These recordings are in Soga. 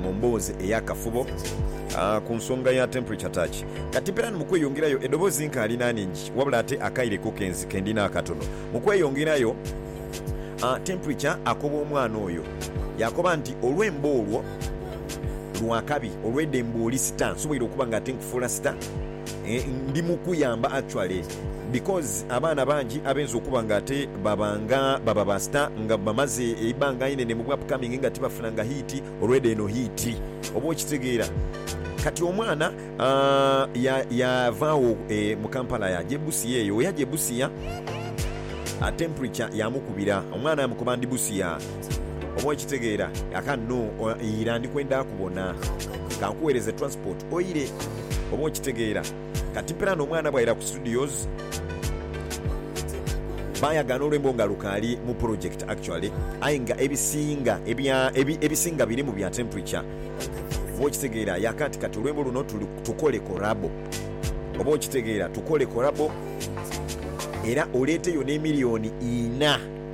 mu mboozi ey'akafubo ku nsonga ya temperature touch. Kati mpeera ni mu kweyongerayo, edoboozi nkaali n'aningi, wabula ate akaire ko kenzi ke ndina akatono. Mu kweyongerayo, temperature akoba omwana oyo, yaakoba nti, Olwembo olwo lwa kabi, olw'edembe oli sita. Nsoboire okuba nga ate nkufuula sita? Ndi mu kuyamba actually. Because abaana bangi abenza okuba nga ate baba nga baba ba star nga bamaze eibanga inene mu bwapcoming nga tibafunanga hit olweda eno hit oba okitegeera kati omwana ya yavagho e mu Kampala yaja e Busia eyo weyaja e Busia a temperature yamukubira omwana yamukoba ndi Busia oba okitegeera kakati no ira ndikwenda kubona kankuwereze transport oire oba okitegeera. Kati plan omwana bwaira ku studios bayagaana olwembo nga lukaali mu project actually aye nga ebisinga ebya ebisinga birimu bya temperature oba okitegeera yaka nti kati olwembo luno tukole korabo oba okitegeera tukole korabo era oleeteyo ne million ina.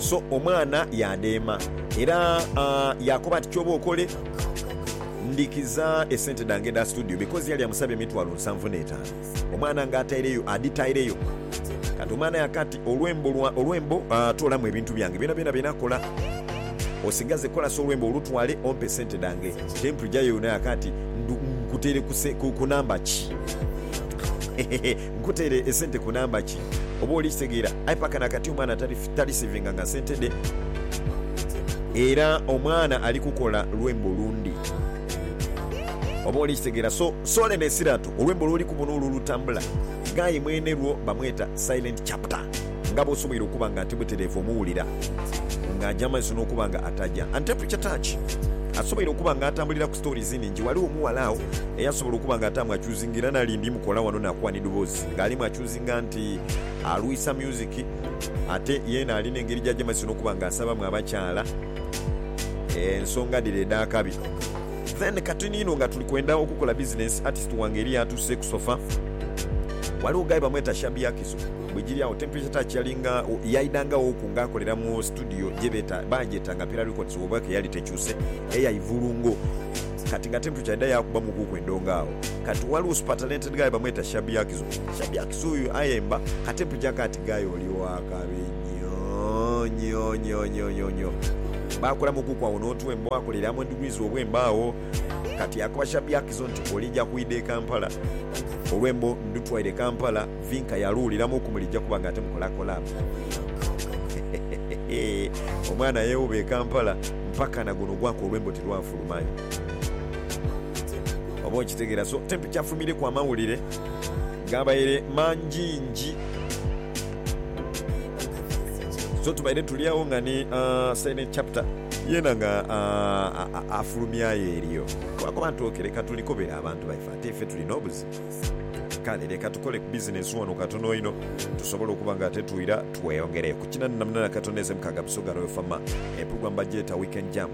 So omwana yaadheema era yaakoba nti, Ky'oba okole, ndhikiza esente dhange edha situdiyo because yali amusaba emitwalo nsanvu n'etaanu. Omwana nga ataireyo adhitaireyo. Kati omwana yaaka ati, Olwembo lwa, olwembo, toolamu ebintu byange byonabyona bye nakola. Osigaze kola sa olwembo olutwale ompe sente dhange. Temple Jayo yona yaaka ati, Nkuteere ku namba ki? Nkuteere esente ku namba ki? Oba oli kitegeera. Aye paka na kati omwana taliseevinganga sente dhe. Era omwana ali kukola lwembo lundi. Oba oli kitegeera. So, sole n'esirato. Olwembo lw'oli kubona olwo olutambula. Ghaaye mwene lwo bamweta Silent Chapter. Nga bw'osoboire okuba nga ati butereevu omuwulira nga aja amaiso n'okuba nga ataja. Ante Preacher Touch asoboire okuba nga atambulira ku stories nhingi. Ghaligho omughala agho eyasobola okuba nga ataamu akyuziza. Nga era nali ndi mukola wano nakuwa ni dhobozi nga alimu achuzinga nti alwisa music ate yena alina engeri gyajemazisa nokuba nga asabamu abakyala ensonga dhire edhakabi then kati niino nga tuli kwenda okukola business artist wange eriyo atuse ku sofa waliwo guy bamweta Shabby Akizo bwejiri awo temperature touch yalinga yaidangaghoku nga akolera mu studio gyebeta bagyeta nga Pira Records woba keyali tekyuse eya Ivulungo. Kati nga Templeton yaidha yaakuba mukuuku endongo agho, kati ghaligho supertalented guy bamweta Shabby Hakizo. Shabby Hakizo oyo ayemba, ka Templeton akaaba ati, Guy oli wa kabi nyoo-nyoo-nyoo-nyoo-nyoo-nyoo. Baakola mukuuku agho n'otwembo, baakola ere Among Degrees obwembo agho. Kati yaakoba Shabby Hakizo nti, Olija kwidha e Kampala, olwembo ndutwaire e Kampala, Vinka yaluwuliramu ku mulija kuba nga ate mukola collab. Hehehehe, omwana yeewuba e Kampala mpaka na guno gwaka olwembo tilwafuluma. manyi oba okitegera so temp kyafumireku amawulire gabaire manjinji so tubaire tulyagho nga ni silent chapter yena nga afulumyayo eriyo lwakuba nti ok leka tulikobere abantu baife ate ife tuli nobuzibu kale leka tukole ku business wano katono inho tusobole okuba nga ate twira tweyongereku kinanina munana katono eze mukaga busoga royal fama empugwa mbagyeta weekend jam.